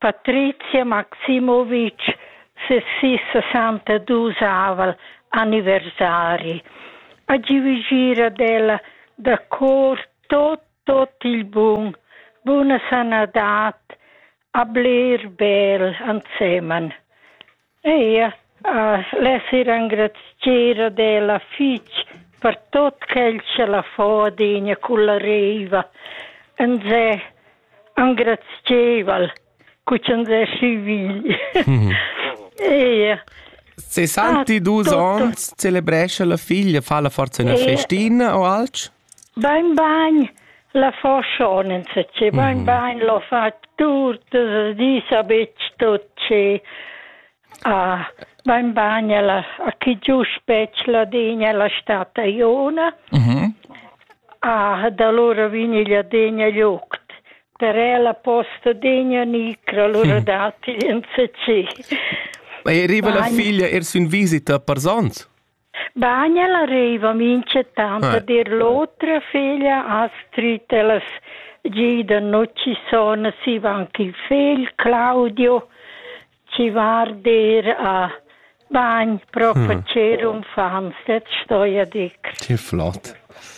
Patrizia Maximovic ses sis sesantadus aval anniversari ha giu gir ad ella da cor tot tot il bun, buna sanadad, ha bler bel ensemen. Eir less ir engrazier ad ella fich per tuot quel cha l'ha fo adegna culla reiva. Nsè engrazieval cu ch'ans es sü vegl. Eir. Se santi dus ons celebrescha la figlia, fa la forza üna festina o alch? Bain bain, la fa schon insatge, bain mhm. bain, l'ho fat tutas las dis a betg tot schi. Ah, bain bain, ella a chi giust betg Ladegna, ella sta Taiona. Mhm. Ah, da allora vini Ladegna joct. Per ella posta degna nicra, allora mhm. datti insatgi. Ma arriva la figlia er sün visita a Parzans? Bagn ella reiva minchatant a dir l'otra feglia Astrid, ellas gidan no chi son, si va anche il fegl Claudio, chi va a arder a bagn pro facer unfants, det stoja dir. Che flott.